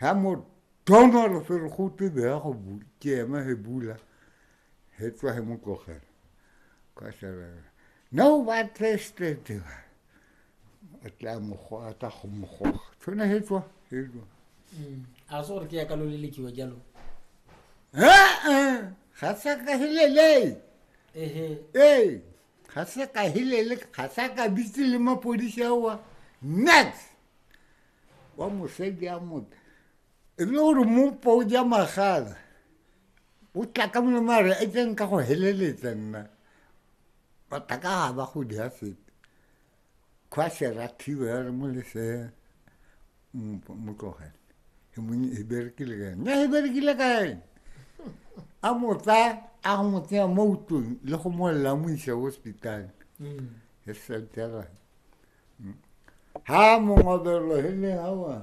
ha mo tona lo fere go te be go bula ke ema he bula he tswa he mo tlogela ka sala no ba teste te ba a tla mo go a tla go mo go tsone he tswa he tswa mm. a se gore ke ya ka lo le lekiwa jalo ha ha ga sa ka helele ehe eh ga sa ka helele ga sa ka bitse le mapodisi awa next wa mosadi a mope e le gore mopo o ja magala o tla ka molemo a re e tseng ka go heleletsa nna batha ka ga ba go dia sepe kgwa serathiwe ya re mo lesea mo tlogele e mone e berekile ka ene e berekile ka ene a motsa a go mo tsenya mo utlong le go molelela mo isa hospital e seltera ha mongwe belogeleng awa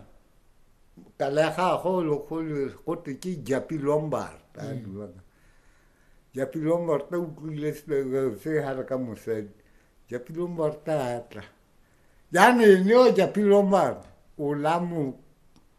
ka le gagwe o legolo gote ke japi lombard a mm. duaka japi lombard a utlwile se gare ka mosadi japi lombard a tla jaanong ene o japi lombard o la mo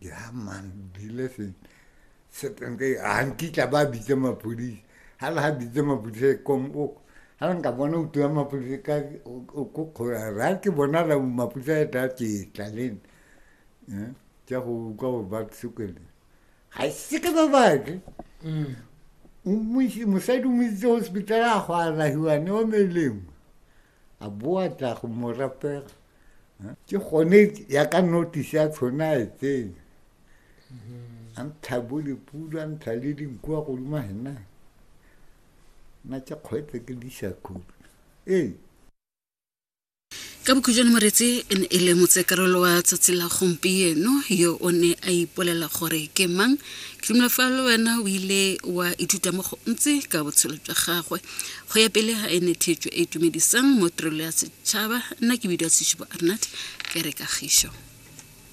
ya man dileseng setenke ga nkitla ba bitse mapodisa ga le ga bitse mapodisa e kom o ga le nka bona uto ya mapodisa ka ko kgola ra ke bona la mapodisa e tla tsetla le nna tsa go utlwa gore ba sekele ga se ke ba batle mosadi o mo itse hospital a go alahiwane o melemo a boa tla go mo rapela ke gone ya ka notice ya tshona e tseng a ntsha bo dipula a ntsha le dinku wa godimo hena na tša kgwetse ke disa khulu ee ka bokhujwane moretse e ne e le motsekarolo wa tsatsi la gompieno yo o ne a ipolela gore ke mang ke dumela fa le wena o ile wa ithuta mo go ntse ka botshelo jwa gagwe go ya pele ga ene theetso e itumedisang mo tirelo ya setšhaba nna ke bidiwa sešupo arnat ke re kagišo